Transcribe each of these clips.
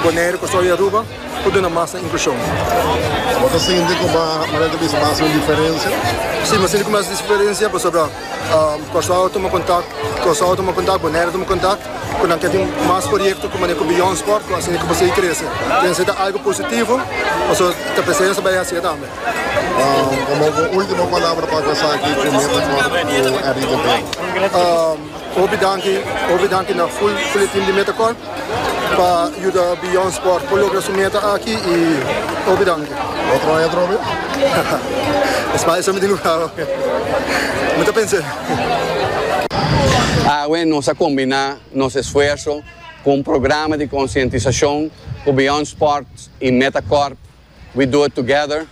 Bonaire, Kòrsou i Aruba por duna mas na inklushon. Bo ta sinti ku bo mester ta bisa mas un diferensia? Sí, mi sinti ku mi hasi diferensia pasobra Kòrsou a tuma kontak, Kòrsou a tuma kontak, Bonaire a tuma kontak ku nan ke tin mas proyekto ku manera ku Beyond Sport ku a siña ku bo sigui krese. Kende seta algu positivo pasobra ta p'esei nos ta bai hasié tambe. Komo bo último palabra pa konsaki ku mi ta kòrda ku Henri de Veen? Hopi danki, hopi danki na full Boletin di Metacorp pa yuda Beyond Sport por logra su meta aki y hopi danki. Otro aña atrobe? Esma eso mi tin lugá oe. Mi ta pens'e. Awe nos a combiná nos esfuerso cu un programa di conscientisacion cu Beyond Sport y Metacorp We Do It Together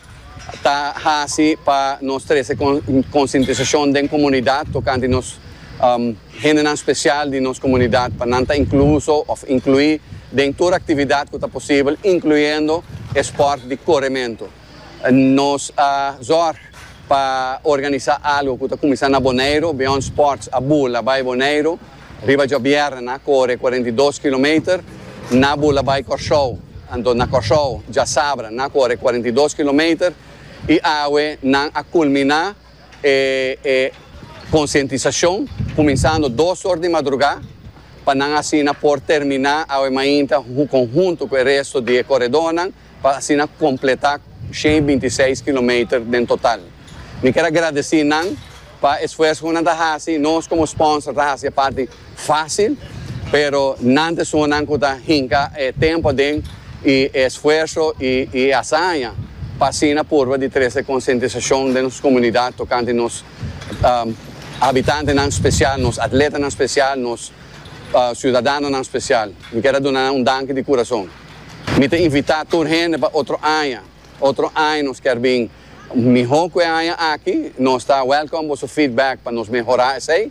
ta hasi pa nos trese konsientisashon den komunidat tokante nos hendenan spesial di nos komunidat pa nan ta inkluso òf inkluí den tur aktividat ku ta posibel, inkluyendo e spòrt di korementu. Nos a zòrg pa organisá algu ku ta kuminsá na Boneiru, Beyond Sports a bula bai Boneiru. Riba djobièrnè nan a kore cuarenta i dos kilometer na bula bai Kòrsou. Anto na Kòrsou djasabra nan a kore cuarenta i dos kilometer i awe nan a kulminá e konsientisashon kuminsando dos or di madrugá pa nan asina por terminá awe mainta kon huntu ku e resto di e koredónan. pa asina completá shen i binti seis kilometer den total. Mi ker a gradeci nan pa esfuerso cu nan ta haci, nos como sponsor ta haci e parti facil, pero nan ta esungunan cu ta hinca e tempo aden i e esfuerso i e hazaña pa asina purba di trece e concientisacion den nos comunidad tocante nos habitantenan special, nos atletanan special, nos ciudadanonan special. Mi ker a duna nan un danki di curason. Mi ta invitá tur hende pa otro aña. Otro aña nos kier bin mihó ku e aña aki. Nos ta wèlkòm boso feedback pa nos mehorá esei.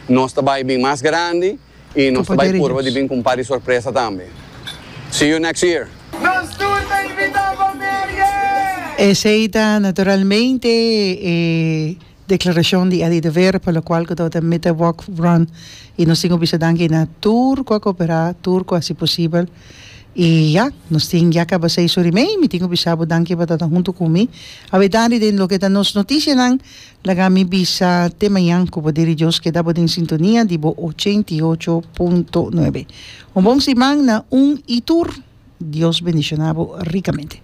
Nos ta bai bin mas grandi i nos ta bai purba di bin ku un par di sorpresa tambe. See you next year! Nos tur ta invitá pa Merrie! Esei ta naturalmente e. Declaracion di Eddie de Vere pa lo cual cu tabatin mita walk run y nos tin cu bisa danki na tur cu a coopera, tur cu a haci posibel y ya nos tin ya caba seis ora y mei, mi tin cu bisa bo danki pa tabata hunto cu mi awedadi den loke ta nos noticianan, laga mi bisa te mañan cu poder di Dios keda bo den sintonia di bo ochenta y ocho punto nuebe. Un bon siman na un y tur, Dios bendicionabo ricamente.